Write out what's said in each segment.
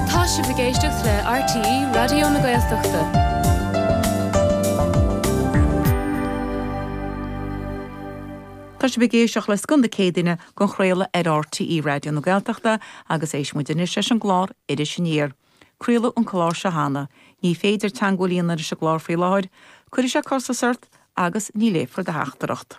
Tá sibh ag éisteacht le RTÉ Raidió na Gaeltachta. Tá sibh ag éisteacht le Scoth na Céadaoine dhá chraoladh ar RTÉ Raidió na Gaeltachta agus éistfidh muid anois leis an gclár Iris Aniar. Craoladh an clár seo cheana. Ní féidir teangmháil a dhéanamh leis an gclár faoi láthair. Cuirfidh sé costas ort agus ní léifear do theachtaireacht.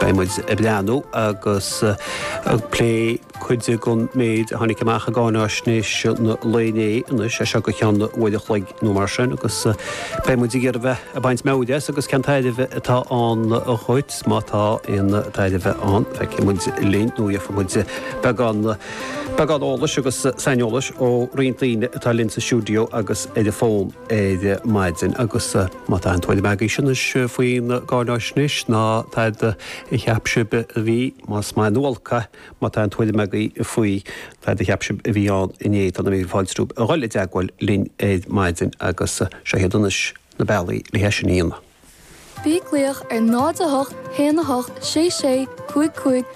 Beidh muid ag breathnú agus ag plé cuid den méid a tháinig amach i gcáinaisnéis an lae inné, anois, as seo go ceann uair a chloig nó mar sin agus beidh muid ag iarraidh bheith ag baint meabhair as agus cén tairbhe atá ann dhuit, má tá aon tairbhe ann. Feicfidh muid linn nó gheobhaidh muid beagán, beagán eolais agus saineolais ó roinnt daoine atá linn sa stiúideo agus ar an bhfón ar maidin agus, Má tá aon tuairim agaibhse anois faoin gcáinaisnéis, ná tada a cheap sibh a bhí, más maith nó olc é, má tá aon tuairim agaibh faoi tada a cheap sibh a bhí ann inné, tá na mílte fáilte romhaibh a dhul i dteagmháil linn ar maidin agus seo iad anois na bealaí le hé sin a dhéanamh. Bí ag glaoch ar 08 1 8 6 6 5 5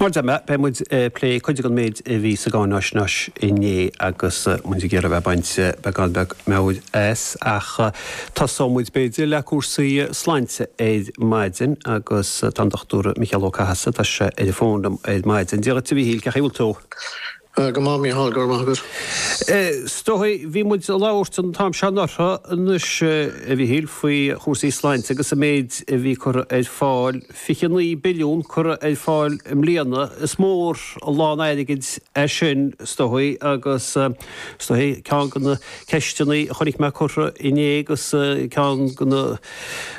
Mar a deirim, beidh muid ag plé cuid den méid a bhí sa gcáinaisnéis inné agus muid ag iarraidh a bheith ag baint beagán beag meabhair as ach tosóidh muid b'fhéidir le cúrsaí sláinte ar maidin agus tá an Dochtúir Mícheál Ó Cathasaigh, tá sé ar an bhfón liom ar maidin. Dia dhuit a Mhíchíl, cén chaoi a bhfuil tú? Tá go maith Mícheál, go raibh maith agat. Is dóichí, bhí muid ag labhairt an t-am seo anuraidh anois, a Mhíchíl, faoi chúrsaí sláinte agus an méid a bhí curtha ar fáil, 29 billiún curtha ar fáil i mbliana. Is mór an lán airgid é sin, is dóichí, agus is dóichí, ceann de na ceisteanna a chonaic mé curtha inné agus ceann de na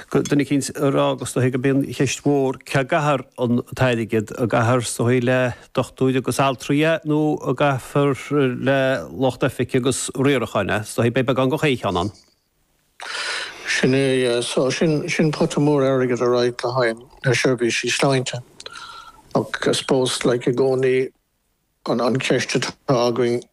duine eicínt ag rá, is dóichí, gurb í an cheist mhór, cá gcaithfear an t-airgead, an gcaithfear, is dóichí, le. dochtúirí agus altraí é nó an gcaithfear le lucht oifige agus riaracháin é? Is dóichí beidh beagán de chaon cheann ann. Sin é, so sin, sin pota mór airgid alright le haghaidh na seirbhísí sláinte. Ach I suppose like i gcónaí an, an cheist atá againn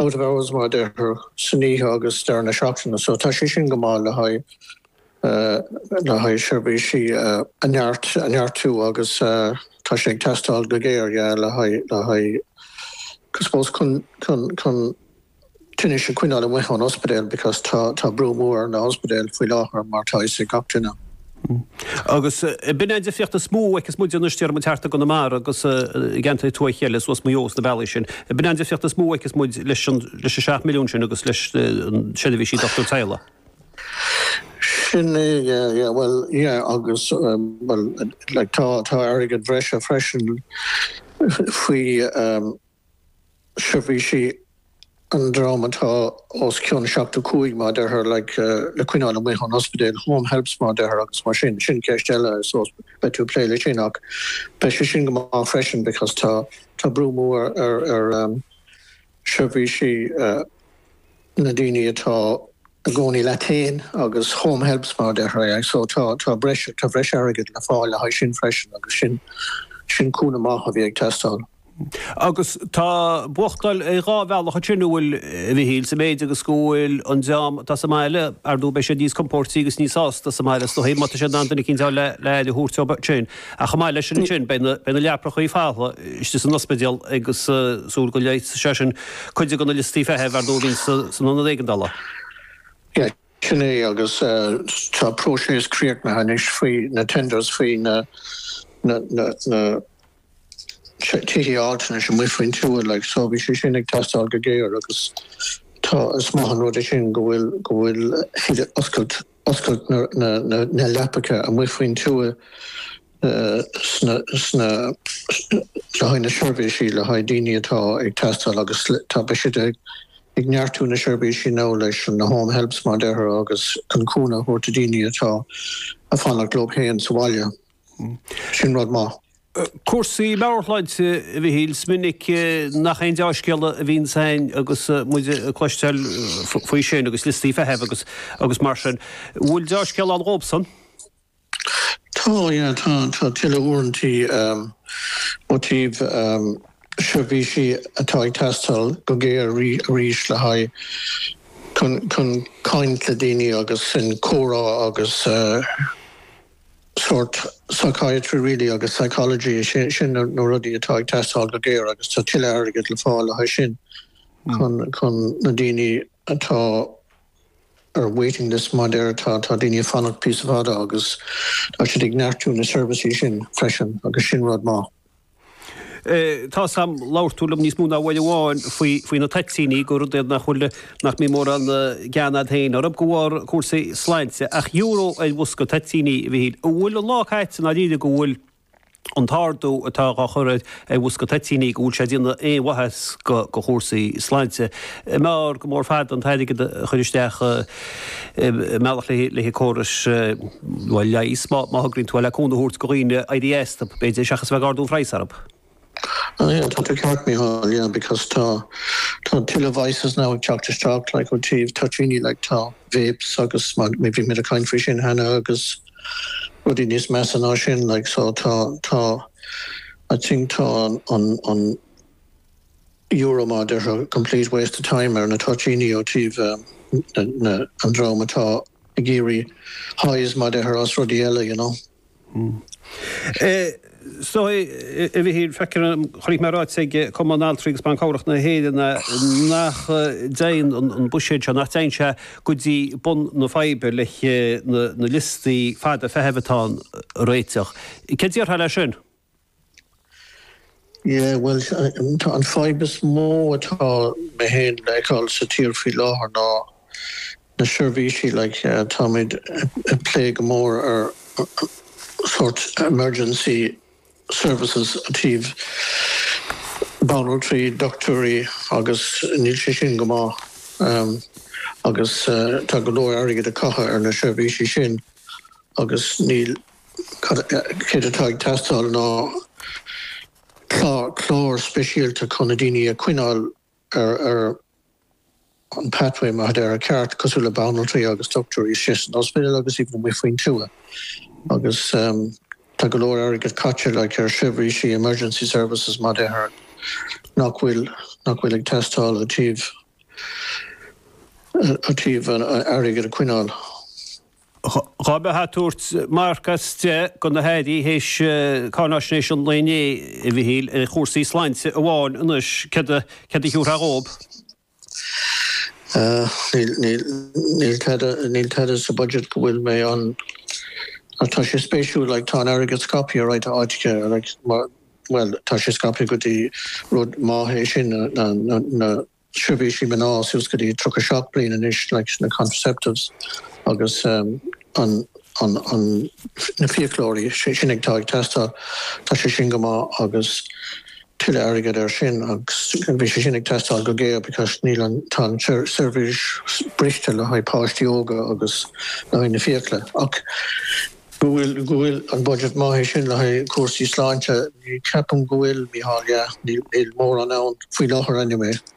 out of hours mar a deirtear san oíche agus deireadh na seachtaine so tá sé sin go maith le haghaidh le haghaidh seirbhísí a neart a neartú agus tá sé ag teastáil go géar yeah le haghaidh le haghaidh I suppose chun chun chun tinnis a choinneáil amuigh ón ospidéal because tá tá brú mór ar na hospidéil faoi láthair mar tá fhios ag gach duine Agus an b'in é an difríocht is mó a fheicfeas muid anois déarfaidh muid thart i gConamara agus i gceantair thuaithe eile suas Maigh Eo is na bealaí sin. An b'in é an difríocht is mó a fheicfeas muid leis an leis an seacht milliún sin agus leis na seirbhísí dochtúir teaghlaigh. Sin é yeah bhuel yeah agus bhuel like tá tá airgead breise freisin faoi seirbhísí an dream atá os cionn 75 mar a deirtear like le coinneáil amuigh ón ospidéal, home helps mar a deirtear agus mar sin, sin ceist eile I suppose beidh tú ag plé le sin ach beidh sé sin go maith freisin because tá tá brú mór ar ar seirbhísí. na daoine atá i gcónaí leo féin agus home helps mar a deirtear yeah so tá tá breis tá breis airgead le fáil le haghaidh sin freisin agus sin sin cúnamh maith a bhí ag teastáil. Agus tá buachtáil ar dhá bhealach ansin an bhfuil, a Mhichíl, sa mhéid agus go bhfuil an dream atá sa mbaile ar ndóigh beidh siad níos compóirtí agus níos sásta sa mbaile is dóigh má tá siad in ann duine eicínt a fháil le aire a thabhairt dóibh sin. Ach chomh maith leis sin beidh na leaprachaí folamh istigh san ospidéal agus ag súil go leigheasfaidh sé sin cuid de na liostaí feithimh ar ndóigh a bhíonn san ionad éigeandála. Sin é agus tá próiseas críochnaithe anois faoi na tenders faoi na tithe altranais amuigh faoin tuath so bhí sé sin ag teastáil go géar agus tá, is maith an rud é sin go bhfuil siad ag oscailt. oscailt na leapacha amuigh faoin tuath sna le haghaidh na seirbhísí le haghaidh daoine atá ag teastáil agus tá beidh siad ag neartú na seirbhísí nó leis na home helps mar a deirtear agus chun cúnamh a thabhairt do dhaoine atá ag fanacht leo féin sa bhaile. Sin rud maith. Cúrsaí meabhairshláinte, a Mhichíl. Is minic nach aon dea-scéala a bhíonn ann agus muid ag cloisteáil faoi sin agus liostaí feithimh agus mar sin. An bhfuil dea-scéal ann dhóibhsan? Tá, yeah. Tá tuilleadh uaireantaí ó taobh seirbhísí atá ag teastáil go géar arís le haghaidh chun caint le daoine agus sin comhrá agus. sórt psychiatry really agus psychology is é sin na rudaí atá ag teastáil go géar agus tá tuilleadh airgead le fáil le haghaidh sin chun chun na daoine atá ar waiting list mar a deirtear tá daoine ag fanacht píosa fada agus tá siad ag neartú na seirbhísí sin freisin agus sin rud maith. Tá a fhios a'm labhair tú liom níos mó ná uair amháin faoi na toitíní, gur rud é nach bhfuil, nach mbíonn mórán gean a'd féin orthu de bharr cúrsaí sláinte, ach euro ar bhosca toitíní, a Mhichíl. An bhfuil an lá caite i ndáiríre go bhfuil an t-ardú atá á chur ar bhosca toitíní, go bhfuil sé ag déanamh aon mhaitheas go chúrsaí sláinte? B'fhearr go mór fada an t-airgead a chur isteach i. i mbealach le haghaidh córais leighis, má thograíonn tú é, le cúnamh a thabhairt go dhaoine éirí as, b'fhéidir, seachas a bheith ag ardú an phraghas orthu. Aye, tá tú ceart, Mícheál, yeah, because tá, tá tuilleadh vices now ag teacht isteach, like, ó taobh toitíní, like, tá vapes agus mar, bhí, bhí muid ag caint faoi sin cheana agus rudaí níos measa ná sin, like, so tá, tá, I think tá an, an, an, euro mar a deirtear 'complete waste of time' ar na toitíní ó taobh na an dream atá ag iarraidh highs mar a deirtear as rudaí eile you know. Sea, a Mhichíl, feicim, chonaic mé ráiteas ag Cumann Altraí agus Ban Cabhrach na hÉireann nach dtéann an buiséad seo, nach dtéann sé go dtí bun na faidhbe leis na liostaí fada feithimh atá ann a réiteach. Céard a déarfá leis sin? Yeah, bhuel, an fhadhb is mó atá mé féin le fheiceáil sa tír faoi láthair ná na seirbhísí, like, táimid ag plé go mór ar sórt emergency services i dtaobh banaltraí, doctúirí agus níl sé sin go maith agus tá go leor airgead á chaitheamh ar na seirbhísí sin agus níl. céard atá ag teastáil ná clár speisialta chun na daoine a choinneáil ar an pathway, mar a déarfá, ceart, cosúil le banaltraí agus doctúirí istigh san ospidéal agus even amuigh faoin tuath agus tá go leor airgead caite like ar sheirbhísí emergency services mar a deirtear nach bhfuil nach bhfuil ag teastáil i dtaobh, i dtaobh an airgead a choinneáil. Dhá mbeifeá ag tabhairt marc as deich do na hAirí théis cáinaisnéis an lae inné, a Mhichíl, ar chúrsaí sláinte amháin anois, céard a thiúrfá dhóib? Níl tada sa budget go bhfuil mé ann. Tá sé spéisiúil, like, tá an airgead scaipthe chuile áit, like, mar, bhuel, tá sé scaipthe go dtí rud maithe sin, na, seirbhísí mná suas go dtí 37 bliain anois, na contraceptives agus na fiaclóirí sin ag teastáil. Tá sé sin go maith agus tuilleadh airgid air sin agus bhí sé sin ag teastáil go géar because níl an, tá an tseirbhís briste le haghaidh páistí óga agus le haghaidh na fiacla. Ach an bhfuil an budget maith é sin le haghaidh cúrsaí sláinte, ní cheapaim go bhfuil, Mícheál, yeah, níl mórán ann faoi láthair anyway.